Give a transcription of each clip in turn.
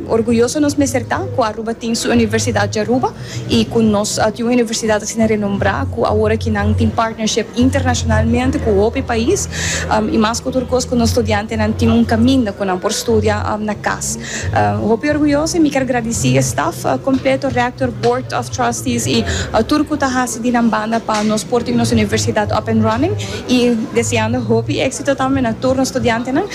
Orguyoso nos mester ta cu Aruba tin su universidad di Aruba y cu nos tin un universidad asina renombrá cu awor aki nan tin partnership internacionalmente cu hopi pais y mas cu tur cos cu nos studiantenan tin un caminda cu nan por studia na cas. Hopi orguyoso y mi ker gradici e staff completo, rector, board of trustees y tur cu ta haci di nan banda pa nos por tin nos universidad up and running y deseando hopi exito tambe na tur nos studiantenan.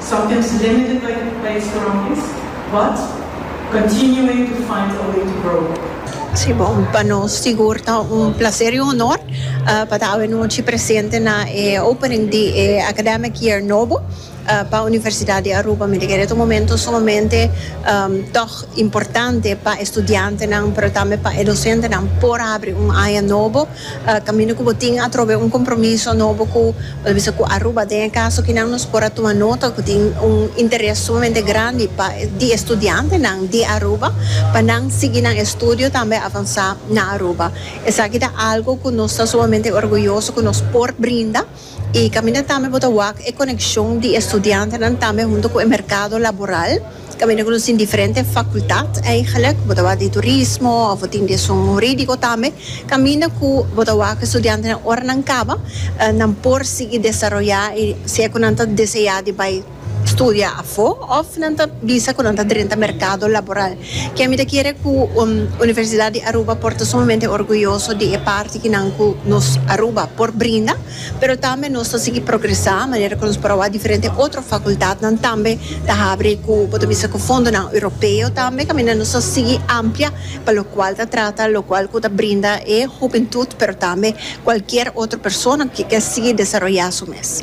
Sometimes limited like e pais grondis but continuing to find a way to grow. Sí, bon, pa nos sigur ta un placer y honor pa ta awenochi presente na e opening di e academic year nobo pa Universidad di Aruba. Mi ta kere ta un momento sumamente tog importante pa e studiantenan pero tambe pa e docentenan por habri un aña nobo. Kaminda ku bo tin atrobe un kompromiso nobo ku por bisa ku Aruba den e kaso kinan nos por a tuma nota ku tin un interes sumamente grandi pa di e studiantenan di Aruba pa nan sigui nan estudio tambe avansá na Aruba. Esaki ta algu ku nos ta sumamente orguyoso ku nos por brinda. I kaminda tambe bo ta wak e konekshon di e studiantenan tambe huntu ku e merkado laboral, kaminda ku nos tin diferente fakultat eigelijk, bo ta wak di turismo òf bo tin di esun hurídiko tambe, kaminda ku bo ta wak e studiantenan ora nan kaba nan por sigui desaroyá i si e ku nan ta deseá di bai studia afó òf nan ta bisa ku nan ta drenta merkado laboral. Ke mi ta kere ku Universidat di Aruba por ta sumamente orguyoso di e parti ki nan ku nos Aruba por brinda, pero tambe nos ta sigui progresá manera ku nos por a wak diferente otro fakultatnan tambe ta habri ku bo ta bisa ku fondonan europeo tambe kaminda nos ta sigui amplia pa lokual ta trata lokual ku ta brinda e hupentut pero tambe kualkier otro persona ku ke sigui desaroyá su mes.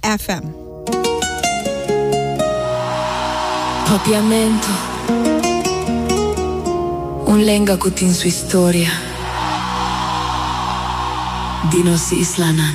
FM. Papiamento, un lenga cu tin su historia di nos islanan.